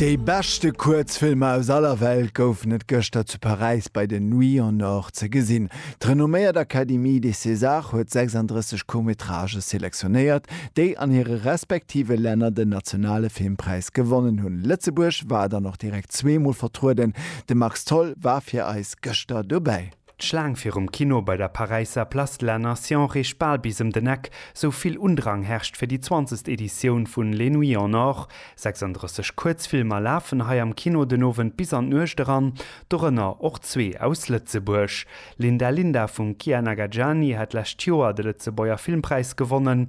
Déi beschte Kuerzfilmer aus aller Welt goufen et gëschter zu Paräis bei den Nuits en Or ze gesinn. D'renomméiert Académie des Césars huet 36 Court-métrages selektionéiert, déi an hire respektive Länner den nationale Filmpräis gewonnen hunn. Lëtzebuerg war dann och direkt zweemol vertrueden, de Max Tholl war fir eis gëschter dobäi. D'Schlaang virum Kino bei der Paräisser Place de la Nation reecht bal bis ëm den Eck, sou vill Undrang herrscht fir déi zwanzegst Editioun vun Les Nuits en Or. 36 Kuerzfilmer lafen hei am Kino den Owend bis an d'Nuecht eran, dorënner och zwee aus Lëtzebuerg. Linda Linda vum Kian Agajani hat d'lescht Joer de Lëtzebuerger Filmpräis gewonnen.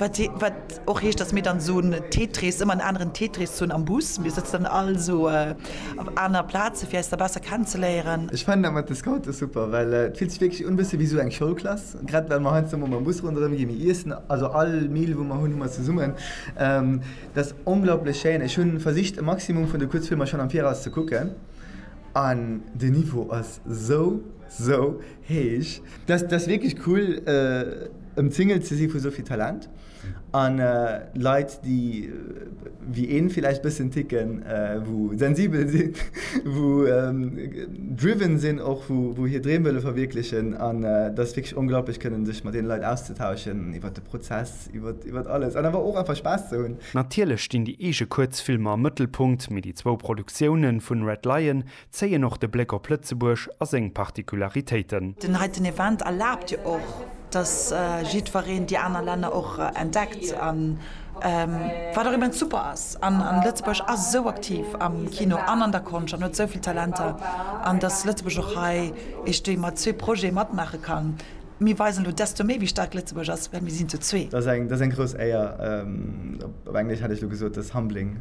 Wat och heescht, datt mir dann esou en Tetris, ëmmer en aneren Tetris hunn am Bus. Mir sëtzen dann all esou op aner Plaze fir eis da besser kennenzeléieren. Ech fannen dat mat de Scoute super, well et fillt sech wierklech un e bësse wéi esou eng Schoulklass. Grad well mer heiansdo mol mam Bus ronderëm ginn, mir iessen, also all Meal, wou mer hunn, hu mer zesummen. Dat ass onglaublech schéin. Ech hu versicht e Maximum vun de Kuerzfilmer schonn am Viraus ze kucken an de Niveau ass esou, esou Heech, dat ass wierklech cool ëmzingelt ze si vu souvill Talent an Leit déi wéi een villäicht bëssen ticken, wou sensibel sinn, wou driven sinn och, wou hir Dreem wëlle verwierklechen an dat ass wierklech onglaublech kënnen sech mat deene Leit auszetauschen iwwert de Prozess, iwwert alles an awer och einfach Spaass ze hunn. Natierlech stinn déi eege Kuerzfilmer am Mëttelpunkt, mee déi zwou Produktiounen vun Red Lion Zéien och de Bléck op Lëtzebuerg a seng Particularitéiten. Den heiten Event erlaabt jo och, dass jiddwereen déi aner Länner och entdeckt, wat och immens super ass. An Lëtzebuerg ass esou aktiv am Kino an an der Konscht an huet esou vill Talenter. An dass Lëtzebuerg och hei eeschtwéi mat zwee Projete matmaache kann. Mir weisen elo desto méi, wéi staark Lëtzebuerg ass, well mir sinn zu zwee. Dat ass eng grouss Éier, op Englesch hätt ech elo gesot, that's humbling.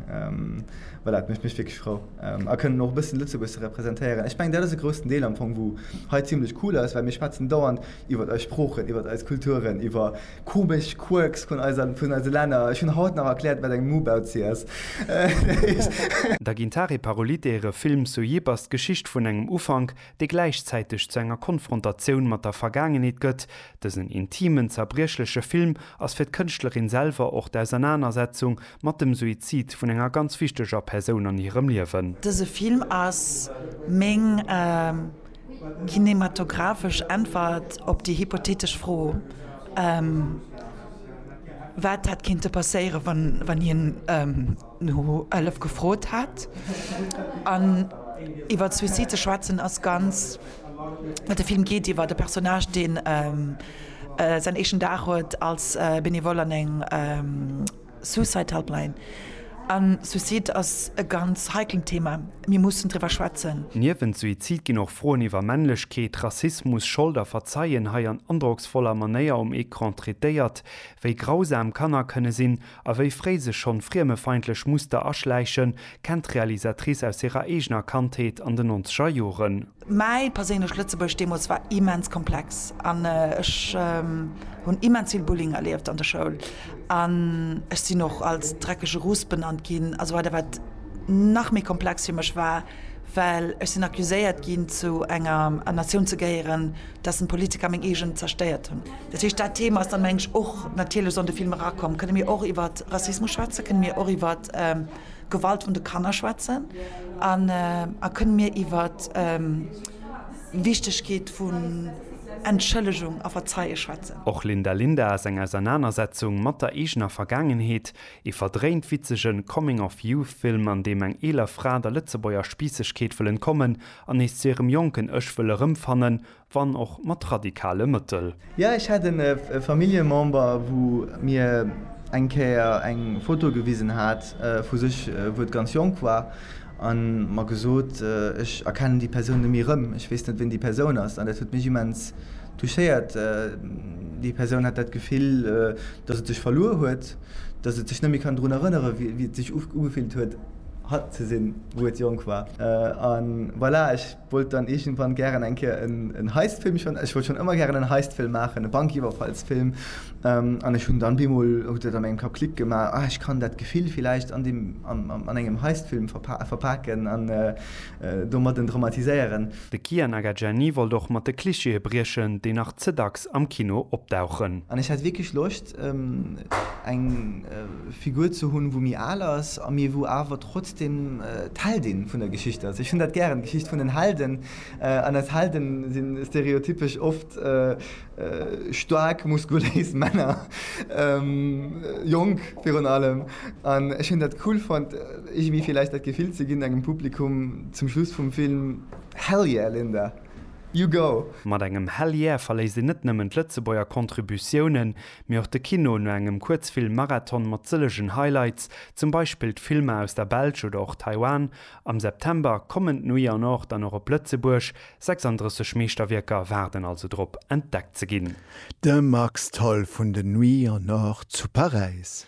Voilà, et mécht mech wierklech frou. A kënnen och e bëssen Lëtzebuerg representéieren. Ech mengen, dat ass e groussen Deel am Fong, wou hei zimmlech cool ass, well mir schwätzen dauernd iwwert eis Sproochen, iwwert eis Kulturen, iwwer komesch Quirks vun eiser, vun eise Länner. Ech hunn haut nach erkläert, wat eng Mubauzi ass. Da ginn d'Hare Parolite hire Film Sojib ass d'Geschicht vun engem Ufank, dee gläichzäiteg zu enger Konfrontatioun mat der Vergaangenheet gëtt. Dësen intimen, zerbriechleche Film ass fir d'Kënschtlerin selwer och d'Ausernanersetzung mat dem Suizid vun enger ganz wichteger Persoun an hirem Liewen. Dëse Film ass meng kinematographesch Äntwert op déi hypothetesch Fro, wat hätt kinnte passéieren, wann hien. no Hëllef gefrot hat an iwwert Suicide ze schwätzen ass ganz well de Film geet iwwert e Personnage deen säin éischten Dag huet als Benevole an eng Suicide Helpline an Suicide ass e ganz heiklen Thema, mir mussen driwwer schwätzen. Niewent Suizid ginn och Froen iwwer Männlechkeet, Rassismus, Schold a Verzeien hei an androcksvoller Manéier um Ecran traitéiert, wéi grausam Kanner kënne sinn A wéi fréi sech schonn friemefeindlech Muster aschläichen, kennt d'Realisatrice aus hirer eegener Kandheet an den nonzeger Joren. Mäi perséinlecht Lëtzebuerg deemools war immens komplex an ech hunn immens vill Bullying erlieft an der Schoul an ech sinn och als dreckege Russ benannt ginn a sou weider, wat nach méi komplex fir mech war, well ech sinn accuséiert ginn, zu enger Natioun ze gehéieren, dass en Politiker meng eegen zerstéiert hunn. Dat heescht dat Thema ass dann meng ech och natierlech an de Film erakomm. Kënne mir och iwwert Rassismus schwätzen, kënne mir och iwwert Gewalt un de Kanner schwätzen an a kënne mir iwwert Wichtegkeet vun Entschëllegung a Verzeie schwätzen. Och Linda Linda ass eng Ausernanersetzung mat der eegener Vergaangenheet, ee verdréint witzege Coming of Youth Film an deem eng eeler Fra der Lëtzebuerger Spiissegkeet wëll entkommen An nees zu hirem jonken Ech wëll erëmfannen, wann och mat radikale Mëttel. Jo, ech hat en Familljemember wou mir eng Kéier eng Foto gewisen hat vu sech wou et ganz jonk war an mer gesot, ech erkennen déi Persoun nemmi rëm, ech weess net ween déi Persoun ass. An dat huet mech immens touchéiert. Déi Persoun hat dat Gefill dass et sech verluer huet, dass et sech nemmi kann drun erënneren wéi et sech ugefillt huet. Hatt ze sinn, wou et jonk war. An voilà, ech wollt dann iergendwann gären eng Kéier en Heistfilm, ech wollt schonn ëmmer gären en Heistfilm maachen, e Bankiwwerfallsfilm. An ech hunn dann bemol, huet et an mengem Kapp Klick gemaach, ah, ech kann dat Gefill villäicht an deem, an engem Heistfilm verpaken an domadden dramatiséieren. De Kiya Nagagiani wollt och mat de Klischeeë briechen, déi nach ze dacks am Kino opdauchen. An ech hat wierklech Loscht, eng Figur ze hunn, wou méi al ass, mee wou awer trotzdem d'Heldin vun der Geschicht ass. Ech hunn dat gären, d'Geschicht vun den Helden. An eis Helde si stereotypesch oft staark, muskuléis Männer, jonk virun allem. An ech hunn dat cool fonnt, iergendwéi vläicht dat Gefill ze ginn engem Publikum zum Schluss vum Film, Hell yeah, Linda! You go! Mat engem Hell Yeah verléisst een net nëmmen d'Lëtzebuerger Contributiounen, mee och de Kino no engem Kuerzfilm-Marathon mat sëllegen Highlights, zum Beispill d'Filmer aus der Belsch oder och Taiwan. Am September kommen d'Nuit en Or dann och op Lëtzebuerg, 36 Meeschterwierker waarden also drop, entdeckt ze ginn. De Max Tholl vun den Nuits en Or zu Paräis.